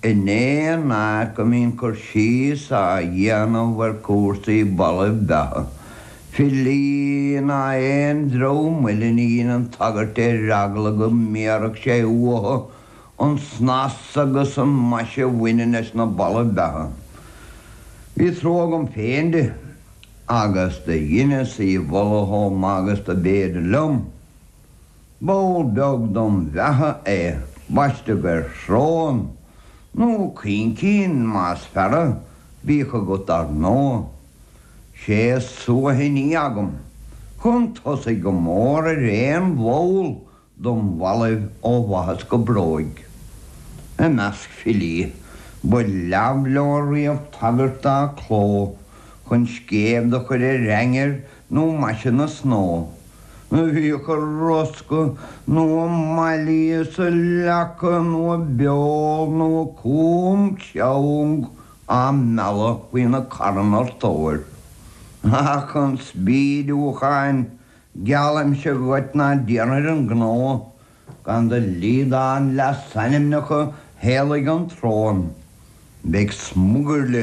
In aon áit go mbíonn cur síos á dhéanamh ar chúrsaí ballaibh beatha, filí ná aon dream eile ní dheineann tagairt ar eagla go mbéarfadh sé uathu an snas agus an mhaise a bhaineann leis na ballaibh beatha. Bhí trua agam féin di agus do dheineas í a mholadh chomh maith agus dob fhéidir liom. Ball beag dom bheatha é baisteadh air srón, nó caincín más fearra, bíodh agat ar ndóigh. Sé suaithní agam chun tosaigh go mór ar aon bhall dom bhallaibh ó bhaitheas go bróig. I measc filí ba leamh leo riamh tagairt dá cló chun scéimh do chur ar ainnir nó maise na snódh, do bhíodh a rosca, nó a mailí is a leaca, nó a beol, nó a com seang á mealladh faoina carn ar tóir ach chun spídiúcháin, geallaimse dhuit ná déanfair an gnó gan do liodán leasainmneacha theaghlaigh an tsróin. Beidh smugairle